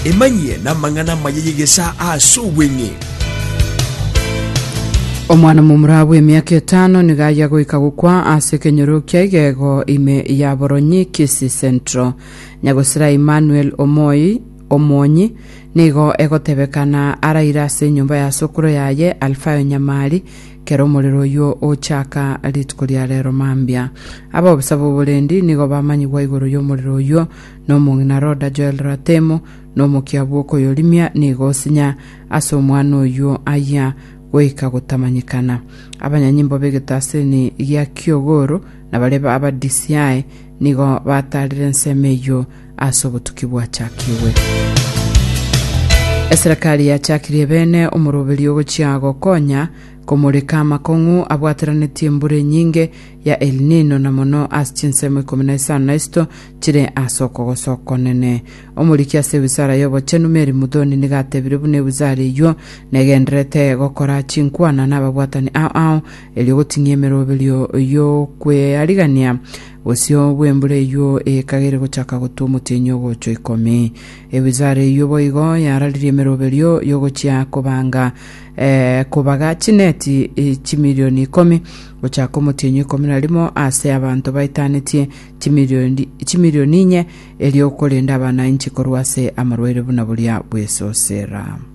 Emanyie namang'ana amaya y'egesaa as'obweng'e. Omwana momura bw'emiaka etano nigo aya goika gokwa ase ekenyoro kia igego ime ya Boronyi Kisii Central. Nyagosera Emmanuel Omoi Omwonyi nigo egotebekana araire ase enyomba ya sokoro yaye Alfayo Nyamari Kera omorero oyio ochaaka rituko ria reero mambia, ab'obosa b'oborendi nigo bamanyigwa igoro y'omorero oyio, na omong'ina Roda Joel Ratemo, na omokia bw'okoyorimia nigo osinya ase omwana oyio ayia goika gotamanyekana. Abanyanyimbo b'egetaseni gia Kiogoro, na baria aba DCI, nigo bataarire ensemo eyio ase obotuki bwachakigwe. Eserekari yachakirie bene omoroberi ogochia gokonya komoreka amakong'u abwateranetie embura enyinge ya El Nino na mono ase chinsemo ikomi na isano na isito chire ase okogosa okonene. Omoriki ase ewizara y'obochenu Mary Muthoni niga atebire buna ewizara eyio negenderete gokora chinkwana nababwatani ao ao erio goting'ia emeroberio y'okwearigania Bosio bw'embura eyio ekagere gochaka gotwa omotienyi ogochwa ikomi. Ebizara eyio boigo yararirie emeroberio y'ogochia kobanga eh, kobaga chineti eh, chimilioni ikomi gochaka omotienyi ikomi na rimo ase abanto baetanetie chimilioni chimilioni inye erio okorenda abana inchi korwa ase amarwaire buna boria bw'esosera.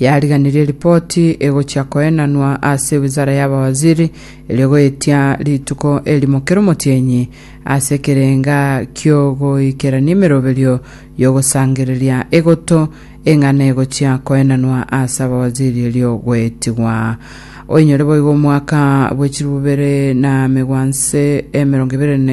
Yariganirie ripoti egochia koenanwa ase wizara y'abawaziri, erio goetia rituko erimo kera omotienyi ase ekerenga ki'ogoikerania emeroberio y'ogosangereria egoto eng'ana egochia koenanwa ase abawaziri erio goetigwa. Oinyore boigo omwaka bw'echirubere na megwanse emerongo ibere na